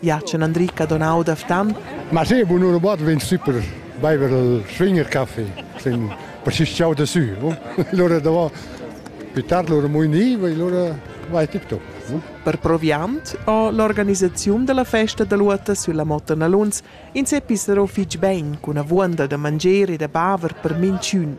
Jacen Andric ha donau da Ftan. Ma se bu nur wat vegn super beiver il schwinger Kaffee sin paschischau da su. Lora da va pitar lora mo ni, e lora vai tip top. Per proviant ho l'organisaziun della festa da luota sulla Motta Naluns in se pissero fich ben cun avuonda da manger e da baver per minchün.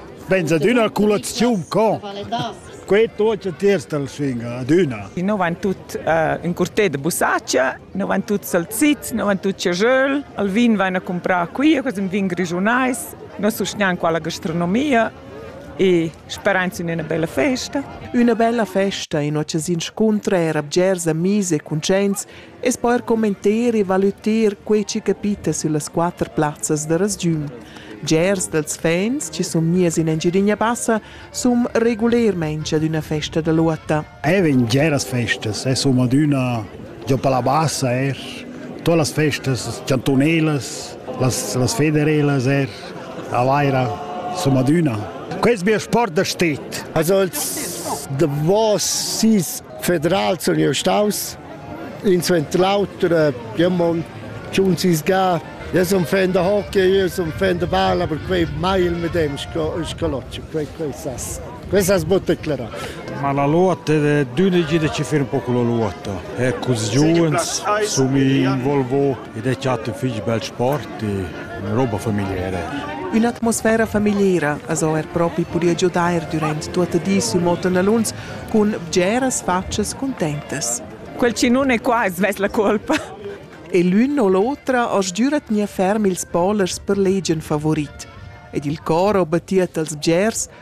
Benza d'üna culaziun con. Quei tuotta tiers dal svinga adüna. Noi van tut uh, in curtè de bussaccia, noi van tut salzits, noi van tut chajöl, al vin van a comprar qui, eu un vin grigiunais, noi sustgnan qua la gastronomia e speranz in üna bella festa. Üna bella festa in occasiun scuntra era bgers amis e cuntscients e's po eir commenter e valüter quai chi capita süllas quatter plazzas da rasgiun. Bgers dals fans chi sun gnius in Engiadina Bassa sun regulermaing ad üna festa da lotta. Eir in bgeras festas e sun adüna giò per la bassa eir. Tuot las festas chantunelas, las, las federelas eir, a Vaira, sun adüna. Quest mio sport da stet. Also als davos sis federal sun jeu staus in suenter l'auter jeu mon schon sis ga Io sono fan da hockey, io sono fan da balla, per quei mai il medem scaloccio, quei quei sas. Questa è sbotta clara. Ma la lotta, d'unigi che fare un po' con la lotta. Ecco, i giovani sono involvati Ed è chatta fich bel sport e üna roba famigliera. Ün'atmosfera famigliera as ho er propi pudü giudair dürant tuotta di sül Motonaluns cun bgeras fatschas cuntentas. Quel chi nun è qua svess la colpa. E l'ün o l'otra as giüra tgnair ferm ils polers per legian favorit. Ed il cor ho battiet als bgers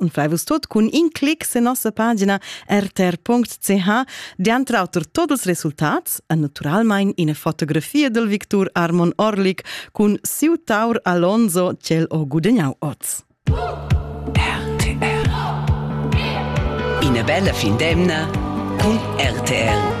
und fleivus tut cun in clic sen nossa pagina rtr.ch, diantre auter tots els resultats e naturalmein ina fotografia del Victor Armon Orlik cun siu taur Alonso cel ho gudegnau oz. RTR Ina bella fin d'emna cun RTR